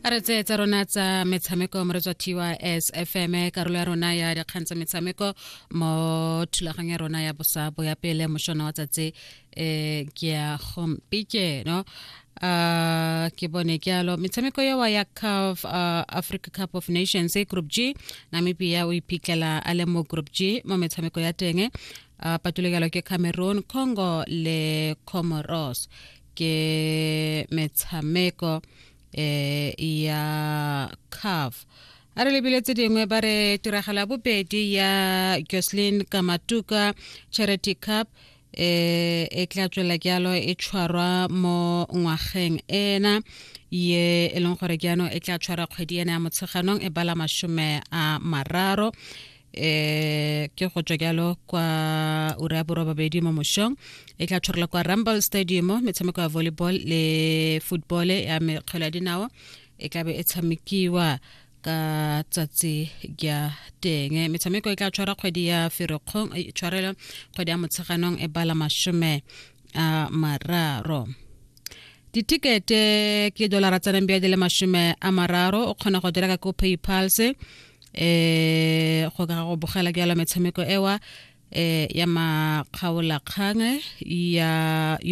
a re tseye tsa rona tsa metshameko mo re tswa tys fm karolo ya rona ya dikgang tsa metshameko mo thulaganyo ya rona ya bosa bo ya pele mošona wa tsatsi um ke ya gompikeno uh ke bone ke alo metshameko ya wa ya CAF uh, Africa Cup of Nations e group G Namibia o iphitlhela a le mo group G mo metshameko ya teng uh, patulekelo ke Cameroon Congo le Comoros ke metshameko eh ya CAF a re lebile tse dingwe ba re tiragala bobedi ya Jocelyn Kamatuka Charity Cup eh e tla tswela jalo e tshwarwa mo ngwageng ena ye e leng gore jaanong e tla tshwara kgwedi ena ya motsheganong e bala masome a mararo eh ke go tswa jalo kwa ura ya borobabedi mo mošong e tla tshwarela kwa rumble stadium metshameko ya volleyball le football ya mekgwelo ya dinao e tlabe e tshamekiwa ka tsatsi ya teng metshameko e tla tshwara kgwedi ya ferikgong e tshwarela kgwedi ya motsheganong e bala masome a mararo ditikete ke dolara tsa nambia di le masome a mararo o kgona go dira ka ko paypals um eh, go ka go bogela ke yalo metshameko ewa eh ya makgaola kgange ya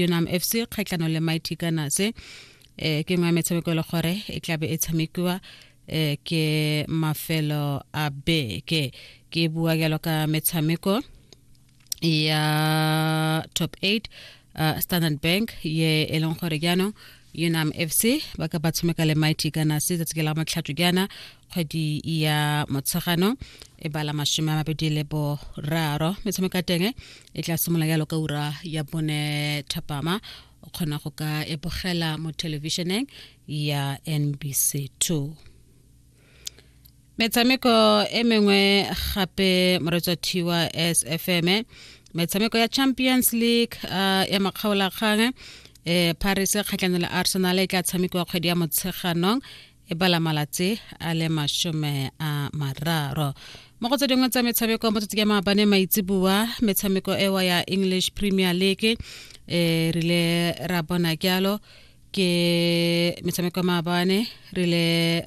unam fc kgatlano le mighty gunners eh ke nngwe ya metshameko e le gore e tlabe e tshamekiwa eh ke mafelo a beke ke bua jalo ka metshameko ya top 8 uh, standard bank ye e leng gore jaanong unam fc ba ka ba tshomeka le mighty kana se tsatsi la motlhato jaana kgwedi ya motshegano e bala masome a mabedi le boraro metshameko ya teng e tla simolola yalo ka ura ya bone thapama o kgona go ka ebogela mo thelebišeneng ya nbc 2 metshameko e mengwe gape moretswa thiwa sfm metshameko ya champions league uh, ya makgaolakgang eh, paris kgatlhano le arsenal e tla tshamekiwa kgwedi ya motsheganong e bala malatsi a le masome a mararo mo go tse dingwe tsa metshameko mo tsatsi ya maabane maitseboa metshameko ewa ya english premier league e rile ra bona kyalo ke metshameko maabane rile